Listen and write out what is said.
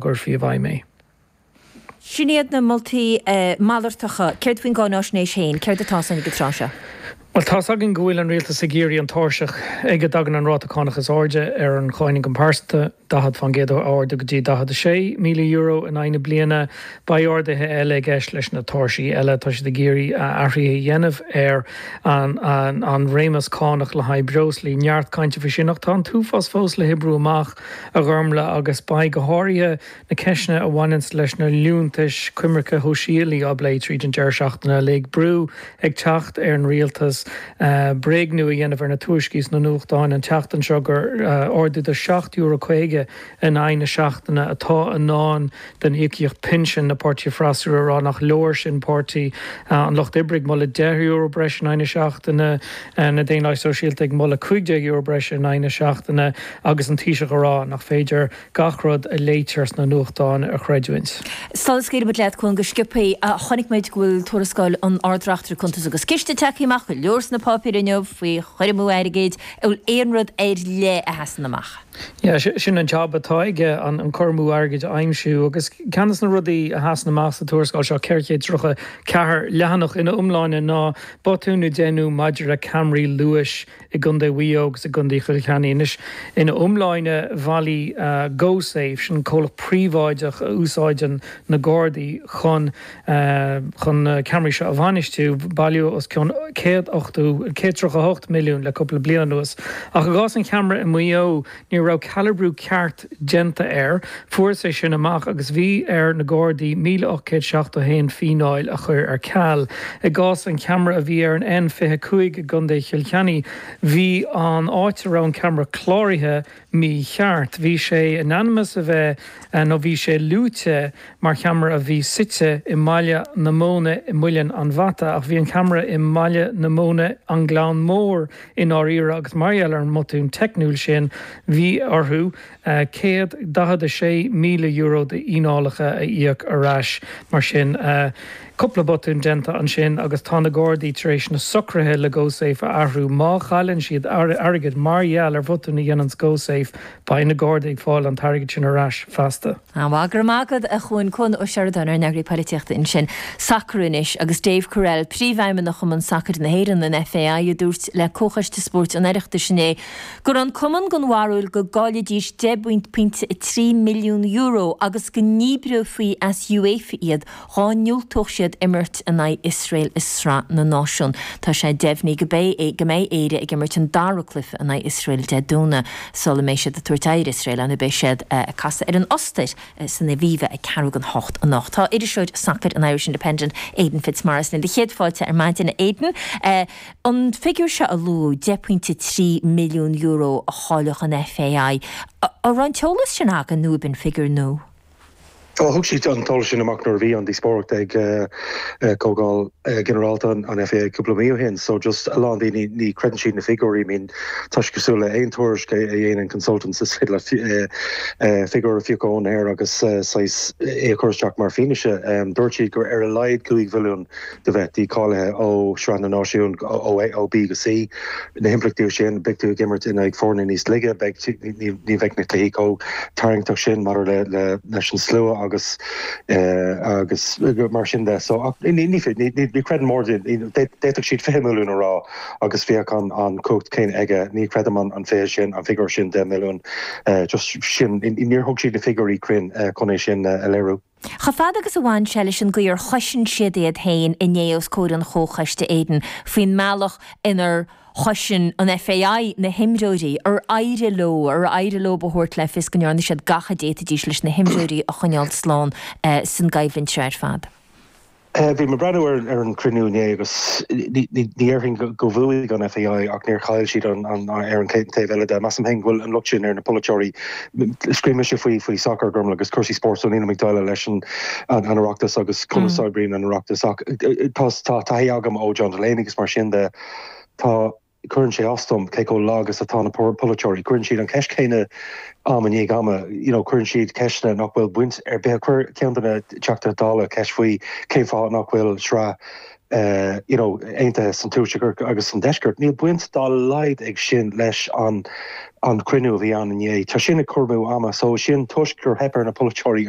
gcuirfí i bhfeidhm é. Sin iad na moltaí malartacha. Céard faoin gcáináisnéis féin? Céard atá ar eolas ag an tráth seo? Bhuel, tá's againn go bhfuil an rialtas ag iarraidh an tairseach ag a dtagann an ráta cánach is airde ar an cháin-ioncam pearsanta, 40 fán gcéad, a ardú go dtí €46,000 in aghaidh na bliana. Beidh arduithe eile i gceist leis na tairsí eile. Tá siad ag iarraidh athruithe a dhéanamh ar an réimeas cánach le haghaidh breoslaí. Neart cainte faoi sin ach tá an t-uafás fós le hoibriú amach. a Ghormfhlaith agus beidh go háirithe na ceisteanna a bhaineanns leis na liúntais coimirce shóisialaigh á bplé tríd an deireadh seachtaine uilig brú ag teacht ar an Rialtas bréagnú a dhéanamh ar na tuairiscí sna nuachtáin an tseachtain seo gur ardú de €7.50 in aghaidh na seachtaine atá i ndán den íocaíocht pinsin na Páirtithe freasúra ag rá nach leor sin Páirtí an Lucht Oibre ag moladh €10 breis in aghaidh na seachtaine, na Daonlathaigh Sóisialta ag moladh €15 breis in aghaidh na seachtaine agus an Taoiseach ag rá nach féidir gach rud a léitear sna nuachtáin a chreidiúint. Sula scaoilimid leat a Chuain go sciobtha, chonaic muid go bhfuil tuarascáil an Ard-Reachtaire Cuntas agus Ciste tagtha amach, go leor sna páipéir inniu faoi chur amú airgid, an bhfuil aon rud ar leith a sheasann amach? Yeah, sin an jab atá aige, an cur amú airgid a aimsiú. Agus ceann de na rudaí a sheasann amach sa tuarascáil seo, 434 leathanach ina iomláine, ná botúin a déanadh maidir le ceamaraí luais i gContae Mhaigh Eo agus i gContae Chill Chainnigh. Anois, ina iomláine, bhailigh GoSafe, sin comhlacht príobháideach a úsáideann na Gardaí chun. chun na ceamaraí seo a bhainistiú. Bailíodh os cionn 100 ochtú, 138 milliún le cúpla bliain anuas. Ach i gcás an cheamara i Maigh Eo, ní raibh calabrú ceart déanta air. Fuarthas é sin amach agus bhí ar na Gardaí 1,871 fíneáil a chur ar ceal. I gcás an cheamara a bhí ar an N25 i gContae Chill Chainnigh, bhí an áit a raibh an ceamara cláraithe, mícheart. Bhí sé in ainm is a bheith, nó bhí sé luaite mar cheamara a bhí suite i mBaile na Móna i Muileann an Bhata, ach bhí an ceamara i mBaile na Móna, An Gleann Mór i ndáiríre, agus mar gheall ar an mbotún teicniúil sin, bhí orthu €146,000 d'fhíneálacha a íoc ar ais. Mar sin. Cúpla botún déanta ansin agus tá na Gardaí tar éis na socruithe le GoSafe a athrú. Má chailleann siad airgead mar gheall ar bhotún a dhéananns GoSafe, beidh na Gardaí ag fáil an t-airgead sin ar ais feasta. An-mhaith go raibh maith agat, a Chuain, Cuan Ó Seireadáin ár n-eagraí polaitíochta ansin. Sacar anois agus David Courell, príomhfheidhmeannach Chumann Sacair na hÉireann, an FAI, a dúirt le Comhchoiste Spóirt an Oireachtais inné go raibh an cumann den bharúil go gcaillfidís €10.3 milliún agus go ndíbreofaí as UEFA iad Dhá ndiúltódh siad imirt in aghaidh Iosrael i Sraith na Náisiún, tá sé deimhnithe go mbeidh Éire ag imirt an dara cluiche in aghaidh Iosrael Dé Domhnaigh sula mbeidh siad ag tabhairt aghaidh ar Iosrael ann beidh siad ag casadh ar an Ostair san Aviva ag ceathrú chun a hocht anocht. Tá iriseoir sacair an Irish Independent, Aidan Fitzmaurice linn. Céad fáilte ar maidin a Aidan. An figiúir seo a luadh, deich bpointe €3 milliún a chaillfeadh an FAI, an raibh an t-eolas sin againn nó ab in figiúir nua? Thug siad an t-eolas sin amach nuair a bhí an díospóireacht ag Comhdháil Ghinearálta an FAI cúpla mí ó shin, so just a lán daoine ní chreideann siad na figiúirí, I mean tá sé cosúil le aon tuairisc a dhéanann consultants, is féidir leat figiúr a phiocadh ón aer agus saghas é a chur isteach mar fhianaise. Dúirt siad gur ar a laghad cúig mhilliún de bheith dícháilithe ó Shraith na Náisiún ó B go C. Na himpleachtaí sin, beidh tú ag imirt in aghaidh foirne níos laige, ní bheidh na cluichí chomh tarraingteach sin maidir leis an slua agus mar sin de. So ní chreidim mar, d'fhéadfadh siad 20 milliún a rá agus bheadh an chumhacht chéanna aige, ní chreidim an fiche sin, an figiúr sin, 10 milliún, just sin, níor thug siad na figiúirí cruinn chun é sin a léiriú. Chomh fada agus a bhain sé leis an gcaoi ar chosain siad iad féin inné os comhair an Chomhchoiste Aidan faoin mbealach inar chosain an FAI na himreoirí, ar éirigh leo, ar éirigh leo a thabhairt le fios go ndearna siad gach a d'fhéadfaidís leis na himreoirí a choinneáil slán san gcoimhlint seo ar fad. Bhí mé ag breathnú ar an gcruinniú inné agus ní dhéarfainn gur bhuaigh an FAI ach níor chaill siad ar an taobh eile de. Measaim féin go bhfuil an locht sin ar na polaiteoirí. Scríobhaimse faoi, faoi sacar, go minic agus cúrsaí spóirt so nílim ag déileáil leis an Oireachtas agus conas a oibríonn an Oireachtas ach tá taithí agam ó John Delaney agus mar sin de tá Cuireann sé as dom cé chomh lag is atá na polaiteoirí. Cuireann siad an cheist chéanna am i ndiaidh ama. You know, cuireann siad ceisteanna nach bhfuil baint ar bith. Chuir ceann de na Teachtaí Dála ceist faoi cén fáth nach bhfuil sraith you know, aontaithe san tuaisceart agus san deisceart. Níl baint dá laghad ag sin leis an cruinniú a bhí ann inné. Tá sin ag cur amú ama. So sin toisc gur theip ar na polaiteoirí a